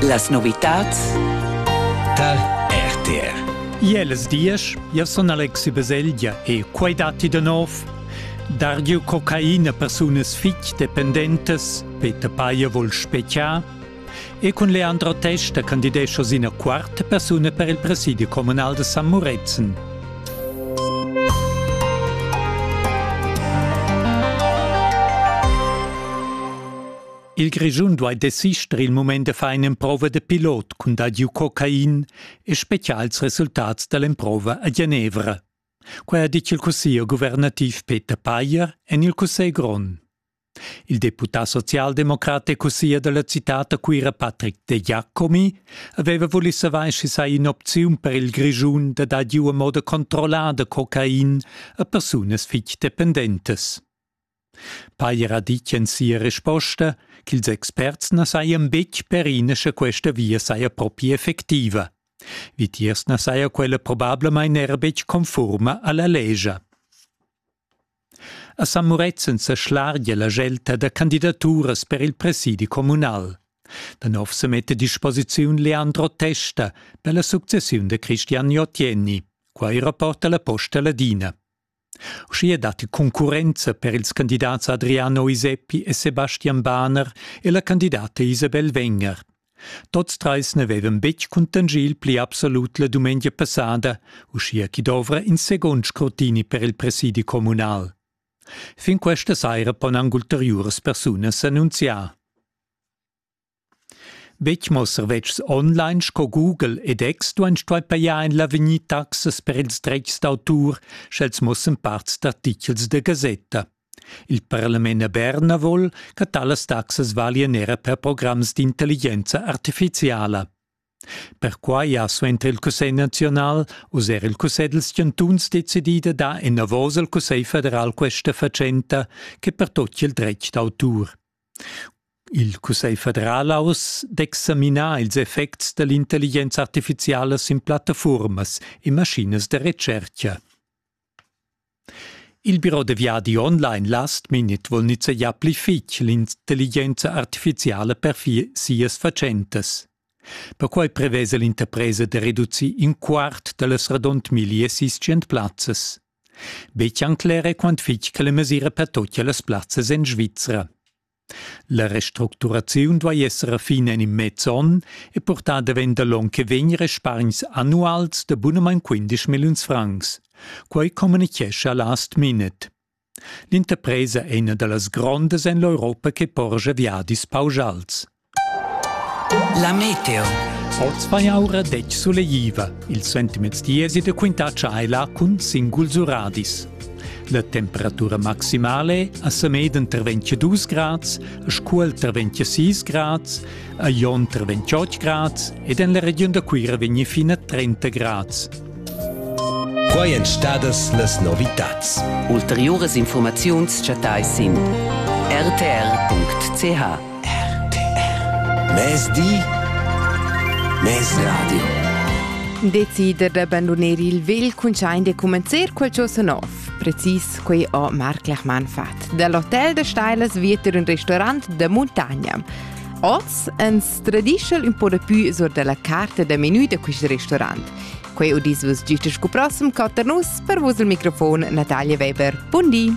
Las novitads tar RTR. Jeles diesch, io sun Alexi Baselgia e quai datti da nov. Dargio cocaina persunas fitg dependentas, Peter Payer vol speciar, e cun Leandro Testa candidescho sina quarta persuna per il presidio comunal de San Muretzen. Il Grischun duai desister il mument da far in'emprova da pilot cun dadiu cocain e spezial ils resultats da l'emprova a Genevra. Quai ha ditg il cussiglier guvernativ Peter Payer en il Cussegl grond. Il deputà socialdemocrat e cussier da la citad a Cuira Patrick De Giacomi aveva vulì savair sch'i saja in'opziun per il Grischun da dar giu a moda controllada cocain a persunas fitg dependentes. Pajer ha ditg en sia resposta ch'ils experts na sajan betg perina sche questa via saja propi effectiva. Vitiers na saja quella probablamain era betg confurma a la lescha. A San Murezzan sa schlargia la gelta da candidaturas per il presidi communal. Da nov se mette a disposiziun Leandro Testa per la successiun da Cristian Jotjenni. Quai rapporta la Posta Ladina. Uschia datti concurrenza per ils candidats Adriano Iseppi e Sebastian Bahner e la candidata Isabel Wenger. Tots trais n'avevan betg cuntanschì il pli absolut la dumengia passada, uschia ch'i dovra in segund scrutini per il presidi communal. Fin questa saira pon anc ulteriuras persunas annunziar. Betg mo servetschs online sco Google ed X duain stuair pajar en l'avegnir taxas per ils dretgs d'autur, sch'els mussan parts d'artitgels da gasetta. Il parlament a Berna vol che talas taxas valian era per programs d'intelligenza artifiziala. Perquai ha suenter il Cussegl naziunal uss er il Cussegl dals chantuns decidì da dar enavos al Cussegl federal questa fatschenta che pertocchia il dretg d'autur. Il Cussegl federal ha uss d'examinar ils effects da l'intelligenza artifiziala sin plattafurmas e maschinas da retschertga. Il biro da viadi online Last Minute vul nizzegiar pli fitg l'intelligenza artifiziala per sias fatschentas. Perquai prevesa l'interpresa da reducir in quart da las radund 1600 plazzas. Bechancler è quant fitg che la mesira pertochia las plazzas en Svizra. La restructuraziun duai esser fin en in mez onn e purtar davent da l'onn che vegn respargns annuals da bunamain 15 milliuns francs. Quai communichescha Last Minute. L'interpresa è ina da las grondas en l'Europa che porscha viadis pauschals. La meteo. Oz vai aura detg suleiva. Il sentiments diesi de quintar tscheila cun singuls uradis. La temperatura maximale a Sameden ter 22 grads, a Scuol ter 26 grads, a Jon ter 28 grads ed en la region da Cuira vegni fina 30 grads. Quai èn stadas las novitads. Ulteriuras infurmaziuns chattai sin rtr.ch. RTR. Mezdi, mezradio. Decider d'abbandonar il vegl cuntschaint e cumenzar quel ciò sa nov. Precis quei ho Marc Lechmann fat. Dall'Hotel de Steilas vieter un restaurant da muntagna. Oz, en tradischel un po da pü sur dalla carta da menü da quist restaurant. Quei udis vus gist sco prossem quatter nus per vus il microfon Natalia Weber. Bundi!